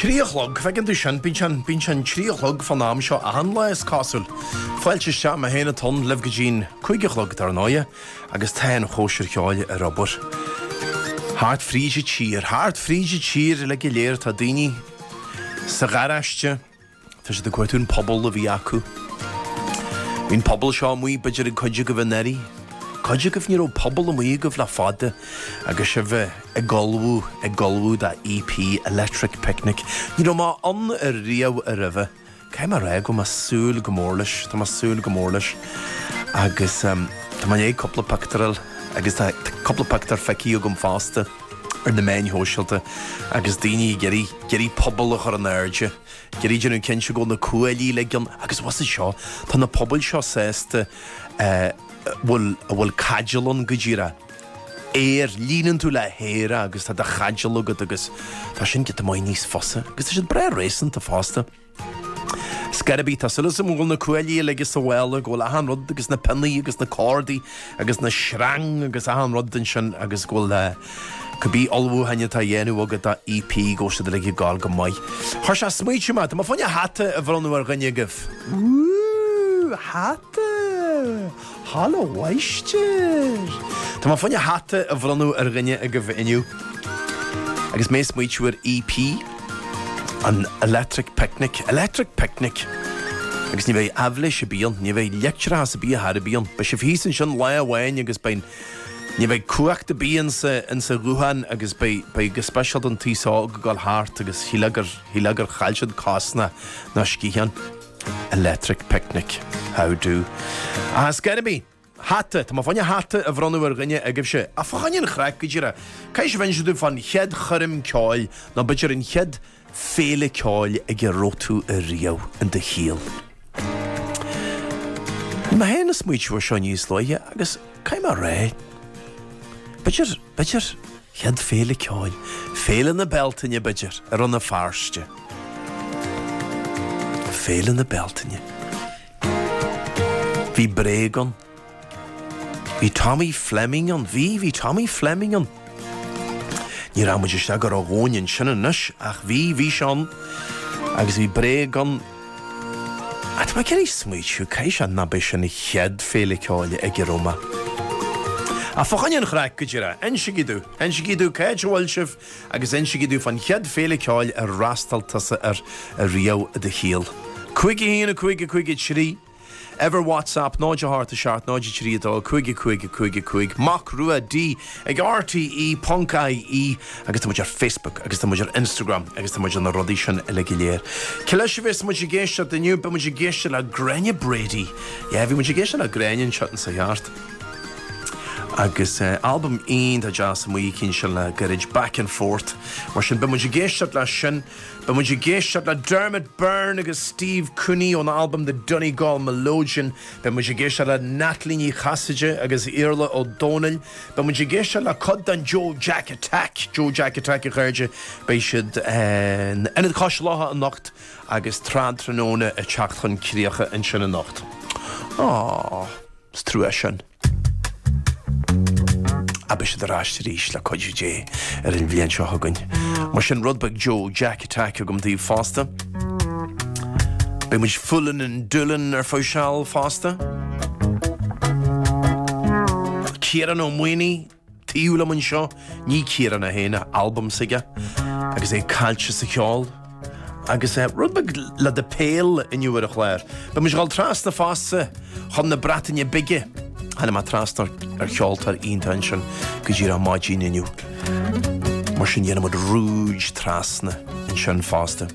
Trí a chlog, feiceann tú sin? Bíonn sé, bíonn sé an trí a chlog fán am seo achan lá is cosúil. Fáilte isteach, mé féin atá ann libh go dtí'n cúig a chlog dar ndóighe agus tá an chóisir cheoil ar obair. Thart fríd an tír, thart fríd an tír le go léir tá daoine sa gharáiste, Tá siad ag cuartú an puball a bhí acu. Bhí an puball seo amuigh, b'fhéidir ag cuid agaibh anuraidh. Cuid agaibh, ní raibh puball amuigh agaibh le fada agus sibh eh, ag ullmhú, ag ullmhú do EP, Electric Picnic. Ní raibh mé ann ariamh aroimhe. Caithfidh mé a rá go bhfuil mé ag súil go mór leis, tá mé ag súil go mór leis. Agus em, tá mé i ndiaidh cúpla pictiúr agus tá cúpla pictiúr feicthe agam fosta ar na meáin shóisialta agus daoine ag iarraidh, ag iarraidh puball a chur in airde. Ag iarraidh déanamh cinnte go bhfuil na cuaillí uilig ann agus bhfuil a fhios agat seo, tá na pubaill seo fosta a bhfuil, a bhfuil caidéal ann go díreach aer, líonann tú le haer agus tá do chaidéal agat agus tá sin giota maith níos fusa agus tá siad breá réasanta fosta. Scor ar bith, tá súil agam go bhfuil na cuaillí uilig insa mhála, go bhfuil achan rud agus na pionnaí agus na cordaí agus na sreang agus achan rud den sin agus go bhfuil cibé ullmhúcháin atá á dhéanamh agat do EP go bhfuil siad uilig ag gabháil go maith. Chuir sé ag smaointiú mé. Tá mé fá choinne hata a bhronnadh ar dhuine agaibh. Ooh! Hata! Halla mháistir! Tá mé fá choinne hata a bhronnadh ar dhuine agaibh inniu agus mé ag smaointiú ar EP. An Electric Picnic, Electric Picnic! Agus ní bheidh aibhléis ar bith ann, ní bheidh leictreachas ar bith ar chor ar bith ann. Beidh sibh thíos ansin lá amháin agus beidh, ní bheidh cumhacht ar bith insa, insa ghuthán agus beidh, beidh go speisialta an t-aos óg ag dul thart agus shílfeá gur, shílfeá gur chaill siad cos ná, ná sciathán. Electric Picnic. How do. Ach ar scor ar bith. hata. Tá mé fá choinne hata a bhronnadh ar dhuine agaibhse. Ach fá choinne an chraic, go díreach, caithfidh sibh inse domh fán chéad choirm ceoil, nó b'fhéidir an chéad féile ceoil ag a raibh tú ariamh in do shaol. Bhí mé féin ag smaoitiú ar seo níos luaithe agus caithfidh mé a rá, b'fhéidir, b'fhéidir, chéad féile ceoil, Féile na Bealtaine, b'fhéidir, i Rann na Feirste. Féile na Bealtaine. Bhí Bréag ann. Bhí Tommy Fleming ann. Bhí, bhí Tommy Fleming ann. Ní rachaidh muid isteach go ródhomhain ansin anois ach bhí, bhí sé ann agus bhí Bréag ann. Ach tá mé ag iarraidh smaoitiú, caithfidh sé gurbh é sin an chéad féile ceoil ag a raibh mé. Ach fá choinne an chraic go díreach. Insígí domh, insígí domh, cad é a bhfuil sibh agus insígí domh fán chéad féile ceoil ar fhreastail tusa air ariamh i do shaol. 51 5 5 3 Ever WhatsApp 0 a hocht a seacht 0 a trí a dó 5 a cúig a cúig a cúig Mac Rua D ag RTÉ ponc IE agus tá muid ar Facebook agus tá muid ar Instagram agus tá muid ar na rudaí sin uilig go léir. Cé leis a bhéas muid ag éisteacht inniu? Beidh muid ag éisteacht le Gráinne Brady. Yeah, bhí muid ag éisteacht le Gráinne an tseachtain seo chuaigh thart Agus albam iontach deas amuigh aici ansin le gairid, Back and Forth. Mar sin, beidh muid ag éisteacht leis sin. Beidh muid ag éisteacht le Dermot Byrne agus Steve Cooney ón albam The Donegal Melodeon. Beidh muid ag éisteacht le Natalie Ní Chasaide agus Iarfhlaith Ó Domhnaill. Beidh muid ag éisteacht le cuid den Joe Jack Attack, Joe Jack Attack, a chairde. Beidh siad in Ionad Cois Locha anocht agus Trad Tráthnóna ag teacht chun críche ansin anocht. Aww. Is trua sin, ach beidh siad ar ais arís le cuidiú Dé ar an bhliain seo chugainn. Mar sin, rud beag Joe Jack Attack agam daoibh fosta. Beidh muid Foolin' in Doolin ar feadh seal fosta. Ciarán Ó Maonaigh. Taobh liom anseo, ní Ciarán é féin, an albam s'aige agus é caillte sa cheol. Agus rud beag le do phéil inniu, ar an chlár, beidh muid ag dul trasna fosta chun na Breataine Bige, tháinig mé trasna ar cheoltóir iontach ansin go díreach ar maidin inniu. Mar sin dhéanfaidh muid rúid trasna ansin fosta.